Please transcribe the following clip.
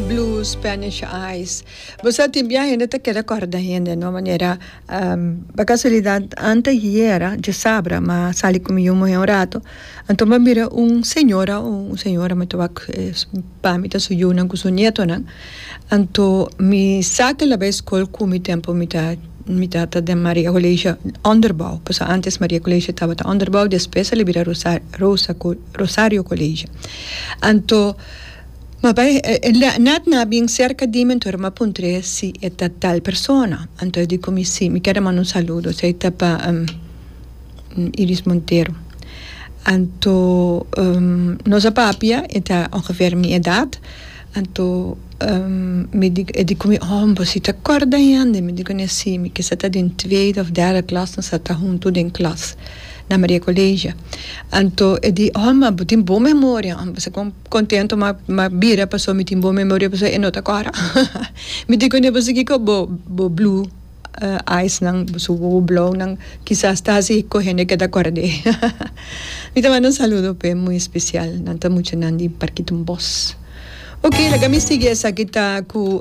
Blue Spanish Eyes. Bo sa tin bia hende ta keda kòrda hende no manera pa kasualidad ante hiera djosabra ma sali ku mi yu muhé un rato anto mi a mira un señora un señora mi ta wak pa mi ta su yunan ku su nietonan anto mi sa ke la bai skol ku mi tempu mi ta mi ta ta den Maria Colegio Onderbouw paso antes Maria Colegio tabata Onderbouw despues a libera Rosa Rosa Rosario Colegio anto. Ma bai, Nat na bin serka di mi, anto e rumapuntre si e ta tal persona. Anto e di ku mi, Si, mi keda manda un saludo, si e ta pa Iris Montero. Anto nos a papia, e ta ongever mi edat, anto mi di, e di ku mi, Oh, bosita korda hende? Mi di ku ne, Si, mi kisa ta den tweede òf derde klas, nos a ta huntu den klas na Maria Colegio. Anto e di, Oh, ma bo tin bon memoria, bo sa kon. Contento ma ma bira paso mi tin bon memoria paso e no ta cora mi tin cona paso kico bo bo blue eyes nan su wowo blou nan kisas ta hasi cu hende ke ta cora d'e mi ta manda un saludo p'e muy especial nan ta muchanan di parkito bos. Ok laga mi sigui esaki ta cu.